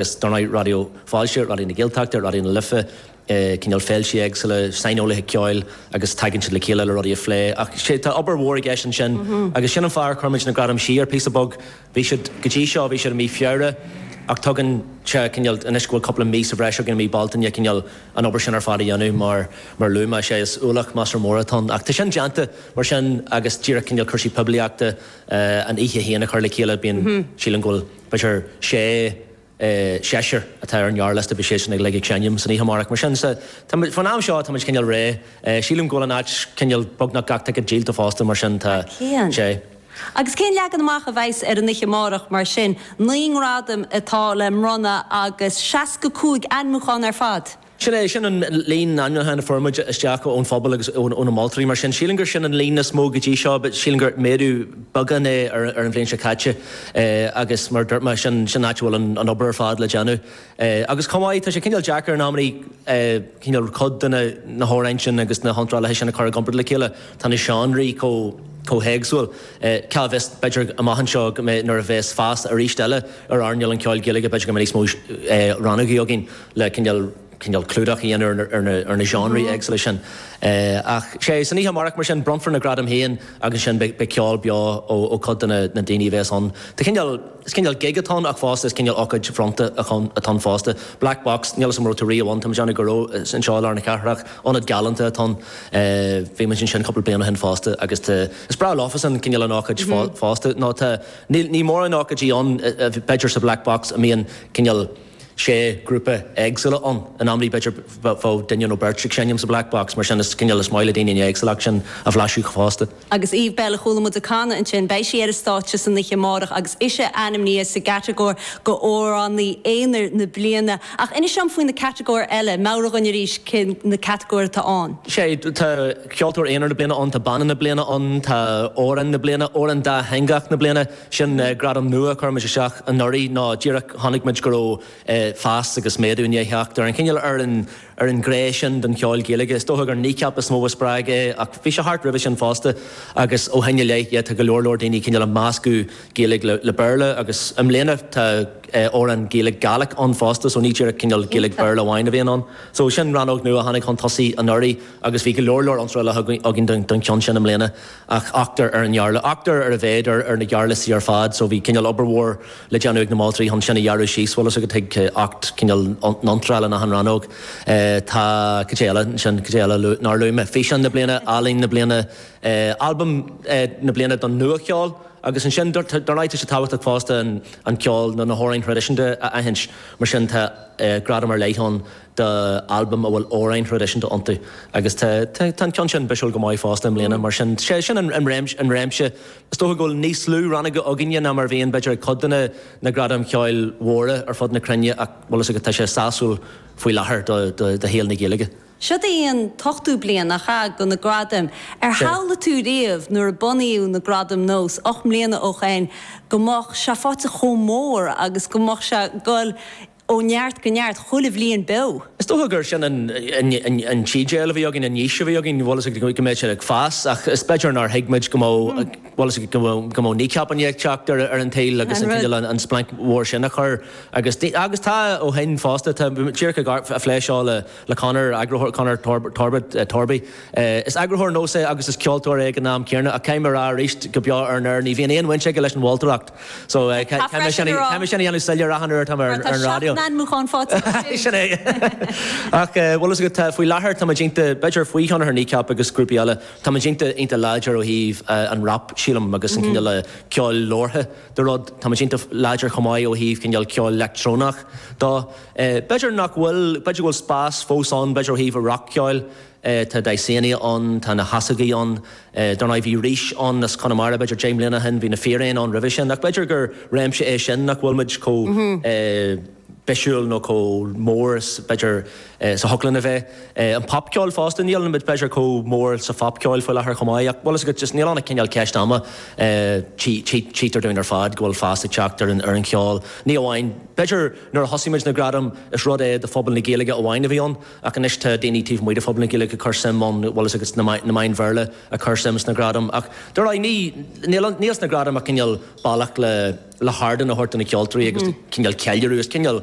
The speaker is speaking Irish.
Is dár ndóigh, Raidió Fáilte, Raidió na Gaeltachta, Raidió na Life, cineál féilte éagsúla, saineolaithe ceoil agus tagann siad le chéile le rudaí a phlé. Ach sea, tá obair mhór i gceist ansin agus sin an fáth ar chuir muid na gradaim siar píosa beag. Bhí siad, go dtí seo, bhí siad i mí Feabhra ach tugann sé cineál, anois go bhfuil cúpla mí sa bhreis againn i mí Bealtaine, cineál an obair sin ar fad a dhéanamh mar, mar a luadh mé, sea, is ualach maslach mór atá ann. Ach tá sin déanta mar sin agus díreach cineál cúrsaí poiblíochta, an oíche féin a chur le chéile, bíonn, sílim go bhfuil, B'fhéidir sé, seisear atá ar an ngearrliosta, beidh siadsan uilig ag seinm san oíche amárach. Mar sin, sea, táimid, faoin am seo, táimid cineál réidh. Sílim go bhfuil an áit cineál, beagnach gach ticéad díolta fosta, mar sin tá, sé. Agus cén leagan amach a bheas ar an oíche amárach, mar sin? Naoi ngradaim atá le mbronnadh agus seasca cúig ainmiúchán ar fad. Sin é, sin an líon ainmniúchán a fuair muid isteach ón phobal agus ó na moltóirí, mar sin sílim gur sin an líon is mó go dtí seo, sílim gur méadú beagán é ar an bhliain seo caite agus mar a dúirt mé, sin an áit a bhfuil an obair ar fad le déanamh agus chomh maith, tá sé cineál deacair in amannaí cineál cuid de na hamhráin sin agus na hiontrálaithe sin a chur i gcomparáid le chéile, tá na seánraí chomh héagsúil, cá bhfios, b'fhéidir amach anseo nuair a bheas feasta arís eile ar earnáil an cheoil Ghaeilge b'fhéidir go mbeidh níos mó rannógaí againn. le cineál clúdach a dhéanamh ar na seánraí éagsúla sin. Ach sé, san oíche amárach, mar sin, bronnfar na gradaim féin agus ansin beidh ceol beo ó cuid de na daoine a bhéas ann. Tá cineál, is cineál gig atá ann ach fosta is cineál ócáid bhronnta atá ann fosta. Black Box, níl 'fhios a'm an raibh tú riamh ann, tá muid in aice leo, anseo i lár na cathrach, ionad galánta atá ann. Bhí muid ansin cúpla bliain ó shin fosta agus tá, is breá leofasan cineál an ócáid fosta, nó tá, níl, níl mórán ócáidí ann, b'fhéidir sa Black Box a mbíonn cineál, sé grúpa éagsúla ann. In amannaí b'fhéidir bheadh duine nó beirt ag seinm sa Black Box, mar sin is cineál is maith le daoine an éagsúlacht sin a bhlaiseadh fosta. Agus Eve Belle a chuala muid ag canadh ansin, beidh sí ar an stáitse san oíche amárach agus ise ainmnithe sa gcatagóir d'Amhránaí Aonair na Bliana. Ach inis dom faoi na catagóirí eile, meabhraigh dhuinn arís cé na catagóirí atá ann. Sé, tá Ceoltóir Aonair na Bliana ann, tá Banna na Bliana ann, tá Amhrán na Bliana, Amhrán Dátheangach na Bliana, Sin gradam nua a chuir muid isteach anuraidh nó díreach chonaic muid go raibh fás agus méadú i ndiaidh theacht ar an chineál ar an ngné sin den cheol Gaeilge. Is dócha gur Kneecap is mó a spreag é ach bhí sé thart roimhe sin fosta agus ó shin i leith tá go leor leor daoine cineál ag meascadh Gaeilge le Béarla agus i mbliana tá amhráin Gaeilge Gaelic ann fosta so ní díreach cineál Gaeilge Béarla amháin a bhíonn ann. So sin rannóg nua a tháinig chun tosaigh anuraidh agus bhí go leor leor iontrála againn don cheann sin i mbliana. Ach ochtar ar an ngearrliosta, ochtar ar a mhéad ar na gearrliostaí ar fad, so bhí cineál obair mhór le déanamh ag na moltóirí chun sin a ghearradh síos, bhfuil fhios agat, chuig ocht, cineál n-iontráil in achan rannóg. Tá, cad é eile ansin, cad é eile nár luaigh mé, físeán na bliana, ealaín na bliana, albam na bliana don nuacheol agus ansin dar ndóigh tá sé tábhachtach fosta an ceol nó na hamhráin thraidisiúnta a aithint mar sin tá gradam ar leith ann, d'albam a bhfuil amhráin thraidisiúnta iontu agus tá an ceann sin bisiúil go maith fosta i mbliana. Mar sin, sé sin an réimse. Is dócha go bhfuil níos lú rannóga againne ná mar a bhíonn, b'fhéidir, ag cuid de na gradaim cheoil mhóra ar fud na cruinne ach, bhfuil fhios agat, tá sé sásúil faoi láthair do shaol na Gaeilge. Seo í an t-ochtú bliain, nach ea, do na gradaim. Ar shamhlaigh tú riamh nuair a bunaíodh na Gradaim Nós ocht mbliana ó shoin go mbeadh sé faighte chomh mór agus go mbeadh sé ag dul Ó neart go neart, chuile bhliain beo. Is dócha gur sin an t-idéal a bhí againn, an fhís a bhí againn, bhfuil fhios agat go mbeadh sé ag fás, ach is b'fhéidir nár thuig muid go mbeadh, bhfuil fhios agat go mbeadh Kneecap ann ag teacht ar an tsaol agus an cineál an splanc mhór sin a chur agus agus tá ó shin fosta, tá, bhí muid díreach á phlé seo le Conor, eagarthóir, Conor Torbóid, Torby, is eagarthóir Nós é agus is ceoltóir é ag an am céanna ach caithfidh mé a rá arís go beo ar an aer, ní bhíonn aon bhaint aige leis an mholtóireacht. Caithfidh mé sin a dhéanamh soiléir achan uair atáim ar an raidió. Mar tá seacht n-ainmiúchán faighte aige. Sin é. Ach, bhfuil fhios agat, faoi láthair táimid iontach, b'fhéidir faoi thionchar Kneecap agus grúpaí eile, táimid iontach iontach láidir ó thaobh an rap sílim agus an cineál ceoil labhartha de rud. Táimid iontach láidir chomh maith ó thaobh cineál ceoil leictreonach dó. B'fhéidir nach bhfuil, b'fhéidir go bhfuil spás fós ann b'fhéidir ó thaobh rac-cheoil, Tá Dysania ann, tá na hEasógaí ann, dar ndóigh. Bhí Rís ann as Conamara b'fhéidir deich mbliana ó shin, bhí na Fíréin ann roimhe sin. Ach b'fhéidir gur réimse é sin nach bhfuil muid chomh bisiúil nó chomh mór is b'fhéidir is a thiocfadh linn a bheith. An popcheol fosta, níl muid b'fhéidir chomh mór sa phopcheol faoi láthair chomh maith ach bhfuil fhios agat, just níl ann ach cineál ceist ama. Tchítear dúinn ar fad go bhfuil fás ag teacht ar an cheol. Ní amháin, b'fhéidir nuair a thosaigh muid na gradaim is rud é do phobal na Gaeilge amháin a bhí ann, ach anois tá daoine taobh amuigh de phobal na Gaeilge ag cur suim ann, bhfuil fhios agat na meáin Bhéarla ag cur suim sna gradaim ach dar ndóigh níl sna gradaim ach cineál bealach le hardán a thabhairt do na ceoltóirí agus cineál ceiliúradh, is cineál.